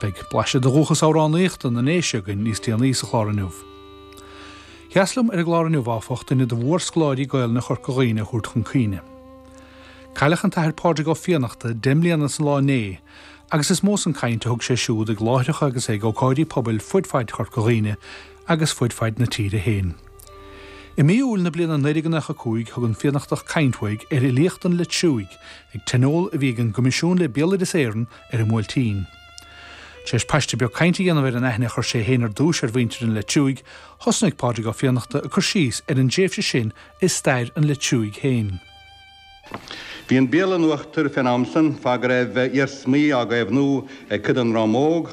Beidh blaiseadh de dhúchas amhránaíochta na nDéise againn níos déanaí sa chlár inniu. Ba dheas liom ar an gclár inniu, áfach, duine de mhór-scoláirí Gaolainne Chorca Dhuibhne a thabhairt chun cuimhne. Cailleadh an tAthair Pádraig Ó Fiannachta deich mbliana is an lá inné agus is mó san caint a thug sé siúd ag láithreacha agus ag ócáidí pobail fud faid Chorca Dhuibhne agus fud faid na tíre féin. I mí Iúil na bliana 1995 thug an Fiannachtach caint uaidh ar fhilíocht an Leitriúigh ag tionól a bhí ag an gCoimisiún le Béaloideas Éireann ar an mBuailtín. Tar éis paiste beag cainte a dhéanamh ar an aithne a chur sé féin ar dtúis ar mhuintir an Leitriúigh, thosnuigh Pádraig Ó Fiannachta ag cur síos ar an dtréimhse sin i stair an Leitriúigh féin. Bhí an Béarla in uachtar fén am san, cé go raibh iarsmaí á gcaomhnú ag cuid den ndream óg,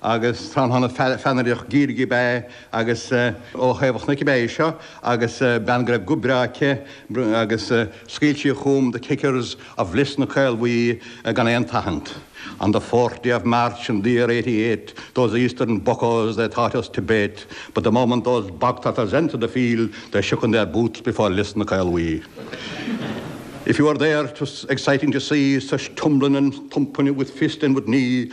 agus tráthnóna feannaideach Ghaeilge ab ea é agus ó Thaobh an Chnoic ab ea é seo agus bean go raibh guth breá aici agus scaoil sí chugam the kickers of Lios na Caolbhuí gan aon tathant on the fourth day of March in the year eighty eight those eastern buckoes they thought us to bate but the moment those bogtrotters entered the field they shook in their boots before Lios na Caolbhuí If you were there it was exciting to see such tumbling and thumping with fist and with knee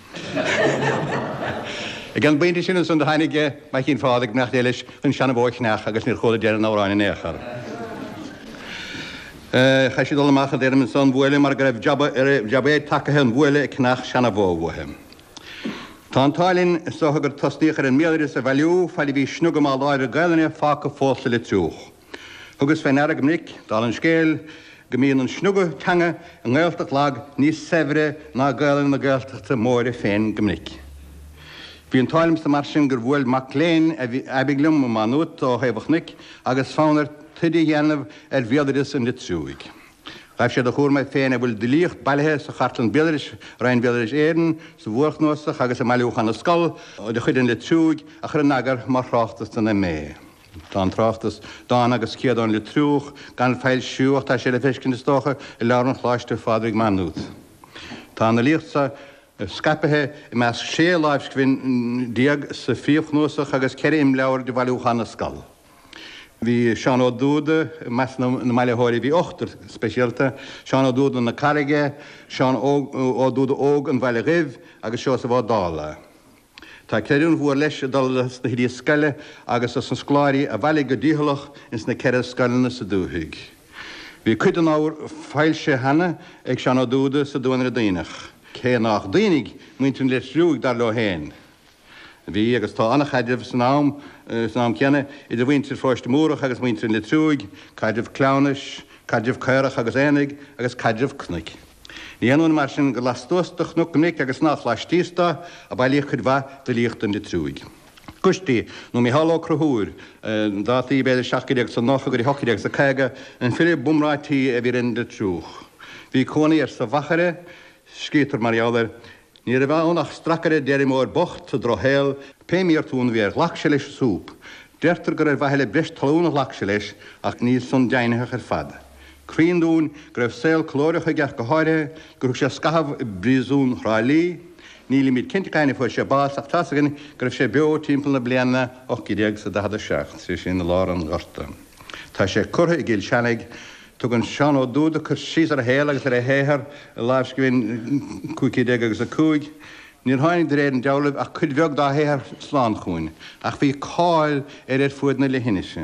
Ag an bpointe sin ansan do tháinig Maicín Phádraig, mac dé leis, chun seanbhó a cheannach agus níor chuala deireadh an amhráin in aon chor. Chaith sí dul amach ag deirim ansan bhuaile mar go raibh jab éigin tagaithe an bhuaile ag ceannach seanbhó uaithi. Tá an t-ádh linn so gur tosnaíodh ar an mbéaloideas a bhailiú fad a bhí sniogadh maith láidir Gaelainne fágtha fós sa Leitriúch. Thugas fé ndeara go minic, dála an scéil, go mbíonn an sniogadh teanga i nGaeltacht lag níos saibhre ná Gaelainn na Gaeltachta móire féin go minic. Bhí an t-ádh liomsa mar sin gur bhuail mac léinn aibidh liom i Maigh Nuad ó Thaobh an Chnoic agus fonn air taighde a dhéanamh ar bhéaloideas an Leitriúigh. Ghaibh sé de chúram air féin a bhfuil d'fhilíocht bailithe sa Chartlann Béaloidis, Roinn Bhéaloideas Éireann, sa mhórchnuasach agus i mBailiúchán na Scol de chuid an Leitriúigh, a chur in eagar mar thráchtas don MA. Tá an tráchtas, Dán agus Céad ón Leitriúch gan foilsiú ach tá sé le feiscint, is dócha, i leabharlann Choláiste Phádraig, Maigh Nuad. Tá an fhilíocht so scaipithe i measc sé láimhscribhinn déag sa phríomhchnuasach agus ceithre imleabhar de Bhailiúchán na Scol. Bhí Seán Ó Dúda i measc na mbailitheoirí. Bhí ochtar speisialta, Seán Ó Dúda na Carraige, Seán Ó Dúda Óg an Bhaile Dhuibh agus Seosamh Ó Dálaigh. Tá creidiúint mhór leis ag dul dos na hoidí scoile agus dos na scoláirí a bhailigh go dícheallach ins na ceithre scoileanna sa dúthaigh. Bhí cuid den ábhar foilsithe cheana ag Seán Ó Dúda sa Duanaire Duibhneach, cé nách Duibhnigh muintir an Leitriúigh dar leo féin. Bhí agus tá an-chaidreamh san am céanna idir mhuintir Pharóiste Múrach agus muintir an Leitriúigh, caidreamh cleamhnais, caidreamh caorach agus aonaigh agus caidreamh cnoic. Ní haon ionadh mar sin gur lastuas do chnoc chnoic agus nách laistíos do a bailíodh cuid mhaith d'fhilíocht an Leitriúigh. Coistí, nó Micheál Ó Conchúir, dátaí b'fhéidir 1790 go dtí 1850, an file b'iomráití a bhí ar an Leitriúch. Bhí cónaí air sa Mhachaire, scríobhtar mar gheall air, Ní raibh ann ach stracaire d'fheirmeoir bocht sa drochshaol, pé mí-fhortún a bhí air ghlac sé leis an súp. Deirtear gur ar mhaithe le breis talún a ghlac sé leis, ach níl san deimhnitheach ar fad. Cruinn dúinn go raibh saol callóideach aige ach go háirithe gur thug sé scathamh i bpríosún Thrá Lí. Nílimíd cinnte cathain a fuair sé bás ach tá's againn go raibh sé beo timpeall na bliana 1847, sé sin i lár an Ghorta. Tá sé curtha i gCill Seanaigh. Tugann Seán Ó Dúda cur síos ar a shaol agus ar a shaothar i lámhscríbhinn 1500 agus 5. Níor tháinig de réir an dealraimh ach cuid bheag dá shaothar slán chúinn ach bhí cáil air ar fuaid na leithinise.